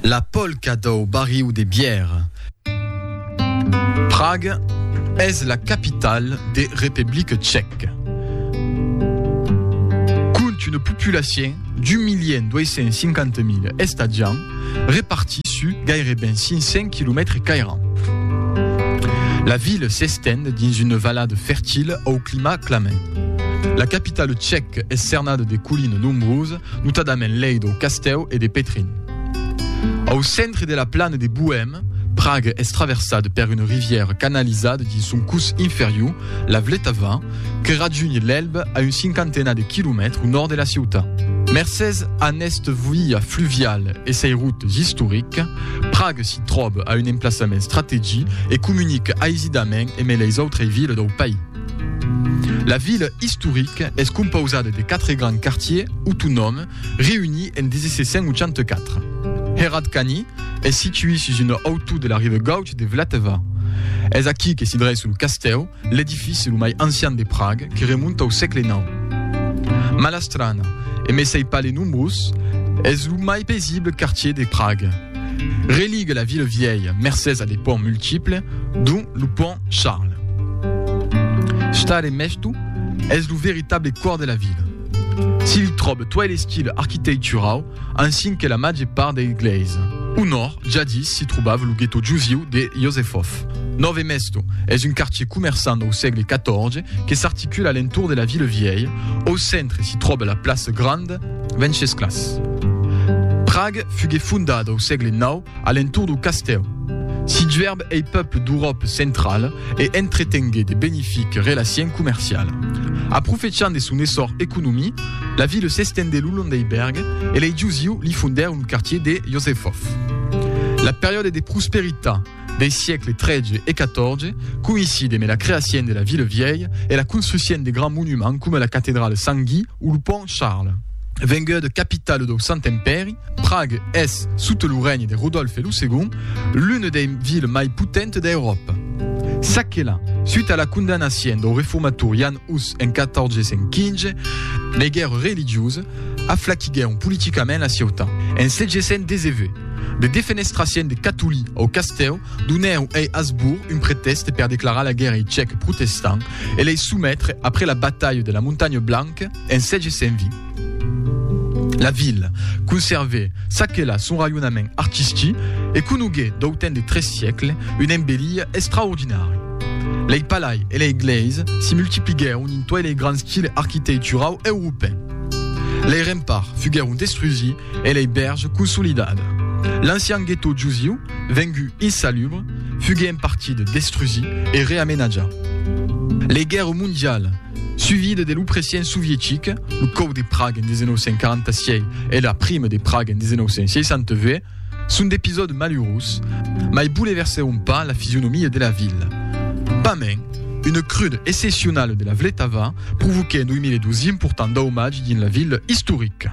La polca dau barriu de bière. Praga es la capitala de Republica Tchèca. Compte una populacion d'un milion dois cents e cinquanta mila estatjants repartits sus gaireben 500 quilomètres cairants. La vila s'estend dins una valada fertila au climat clement. La capitala tchèca es cernada de colinas nombrosas notadament lei dau castèu e de Petrin. Au centre de la plana de Boèm, Prague es traversada per una rivièra canalizada dins son curs inferior, la Vltava, que rajunhe l'Elbe a un cinquantenat de quilomètres au nòrd de la ciutat. Mercés a nesta via fluviala e sei routes istoriques, Prague s'i tròba a un emplaçament strategic e comunica aisidament emé leis autrei vilas dau país. La vila istorica es compausada de quatre grands quartiers autonòmes reunits en 1784. Hradčany es située sus una hautor de la riba gauche de Vltava. Es aquí que s'i dreça lo castèu, l'edifici lo mai ancian de Praga que remonta au sègle nau. Malá Strana, e mai s'ai pas le nombrós, es lo mai paisible quartier de Praga. Religue la ville vièlha mercés a de ponts multiples, dont lo pont Charles. Stade Mèsto es lo veritable còr de la vila. S'i li tròbe tuèi l'estil arquiteicturau ansin que la màger part dei glèis. Au nòrd, jadís s'i trobava lo guetò jusiu de Josefov. Nòve Mèsto es un quartier comerçant dau sègle XIV que s'articula a l'entorn de la ville vièlha. Au centre s'i tròbe la plaça Grande. Vencesclas. Prague fugué fondada au sègle nau a l'entorn dau castèu. S'i juèrb ei peuple d'Euròpe centrala e entretengué de benifique relaciens comerciala. Aprofechant de son essor economii, la vila s'estendé lo long dei bèrgue e lei jusiu li fondèr un quartier de Josefov. La periòde de prosperitat Dei siècles tretze e quatorze coïnciden e la creacion de la Ville Vièlh e la construcion de grands monuments coma la Catedrale Sant Gui o lo Pont Charles. Venguda capitala dau Sant Empèri, Prague es, sota lo règne de Rodolfe lo Segond, l'una dei viles mai potentas d'Euròpa. Çaquelà, suta la condamnacion dau reformator Jan Hus en 1415, lei guèrras religiosas, aflaquiguèron politicament la ciutat. En 719, de defenestraciens de catolí au castèu donèron ei Hasbourg un pretèxte per declarar la guèrra ei cèc protestant e lei sometre après la batalha de la Montagne Blanque en 720. La vila conservè çaquelà son raionament artistic e conoguè d'autant de tres siècles una embellia extraordinària. Lei palai e lei gleis si multipliguèron en toi lei grands quilh arquiteiturau europèn. Lei remparts fuguèron destrusi e lei bèrge consolidada. L'ancian guetò jusiu, vengut insalubre, fugué en partida destrusi e reamenatja. Lei guèrra mondiala, suivida de l'opressien sovietic, lo còp de Praga en 1946 e la prima de Praga en 1968, Son d'episòde malurós, mai boleversèron pas la fisionomia de la vila. Pas main, una cruda excepcionala de la Vletava provoquèt en 2012 important daumatge dins la vila istorica.